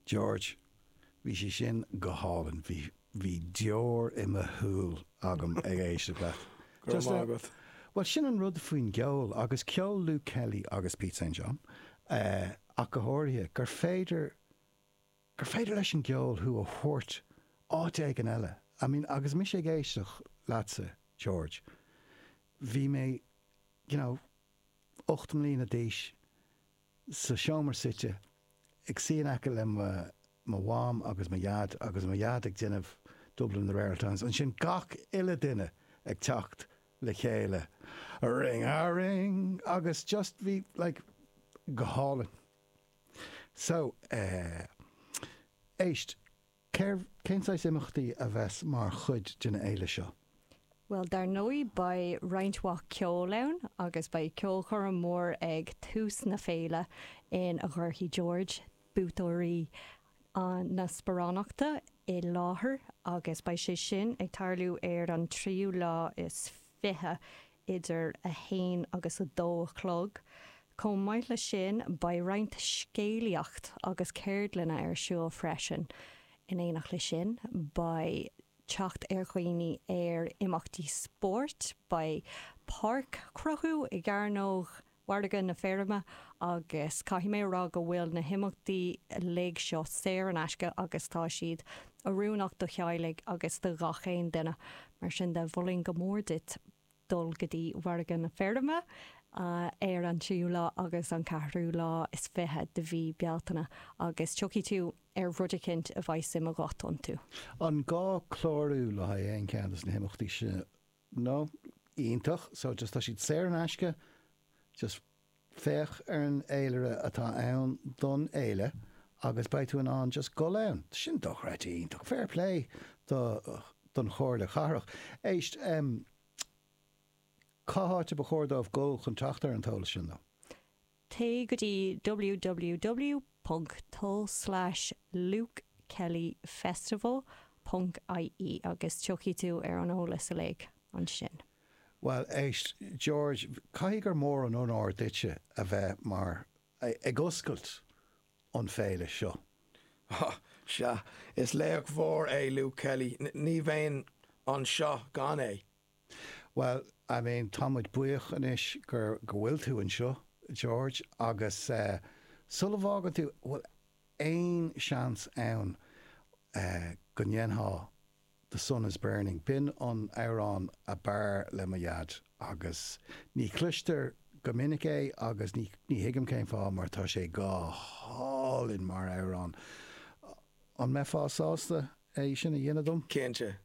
George, Bhí sé sin go hálainn, bhí, bhí deoir i mo shúil agam ag éisteacht leat. Go raibh maith agat. Bhuel sin an rud faoin gceol agus ceol Luke Kelly agus Pete St. John ach go háirithe, gur féidir, gur féidir leis an gceol thú a thabhairt áit éigin eile. I mean agus mise ag éisteacht leatsa, George, bhí mé, you know, ocht mbliana d'aois, sa seomra suite, ag suí in aice le mo Mham agus mo Dhaid agus mo Dhaid ag déanamh Dublin in the Rare Ould Times, ansin gach uile duine ag teacht le chéile ring a ring agus just bhí like go hálainn. So eh. éist. Cérbh, cén saghas imeachtaí a bheas mar chuid den fhéile seo? Bhuel, dar ndóigh beidh roinnt mhaith ceoil ann agus beidh ceolchoirm mhór ag tús na féile in a gcuirfidh George, buaiteoirí na sparánachta i láthair agus beidh sé sin ag tarlú ar an tríú lá is. 20, idir 1 agus 2 a chlog. Chomh maith leis sin, beidh roinnt scéalaíocht agus ceardlanna ar siúl freisin. In éineacht leis sin, beidh teacht ar dhaoine ar imeachtaí spóirt, beidh páirc cruthú i gCearnóg mhargadh na feirme agus caithfidh mé a rá go bhfuil na himeachtaí uilig seo saor in aisce agus tá siad oiriúnach do theaghlaigh agus do ghach aon duine. Mar sin de, mholfainn go mór duit dul go dtí Margadh na Feirme ar an tríú lá agus an ceathrú lá is fiche de mhí Bealtaine agus tiocfaidh tú ar rud eicínt a bheidh suim agat iontu. An gá clárú le haghaidh aon cheann de na himeachtaí seo? no, iontach, so just tá siad saor in aisce, just féach ar an fhéilire atá ann don fhéile agus beidh tú in ann just gul ann. Tá sin dochreidte iontach. Fair play do, don Chomhairle Chathrach. Éist, em, cá háit a ba chóir dóibh gul chun teacht ar an t-eolas sin, though? Téigh go dtí www.to/lukekellyfestival.ie agus tiocfaidh tú ar an eolas uilig ansin. Bhuel, éist, George, caithfidh gur mór an onóir duitse a bheith mar, ag oscailt an féile seo. Á, sea, is laoch mhór é Luke Kelly, ní bheinn anseo gan é. Bhuel, I mean, tá muid buíoch anois gur, go bhfuil tú anseo, George, agus eh, sula bhfágann tú, bhfuil aon seans ann eh, go ndéanfá The Sun Is Burning, b'in an amhrán a b'fhearr le mo Dhaid, agus ní chloistear go minic é agus ní, ní thuigim cén fáth mar tá sé go hálainn mar amhrán. An mbeifeá sásta é sin a dhéanamh dom? Cinnte.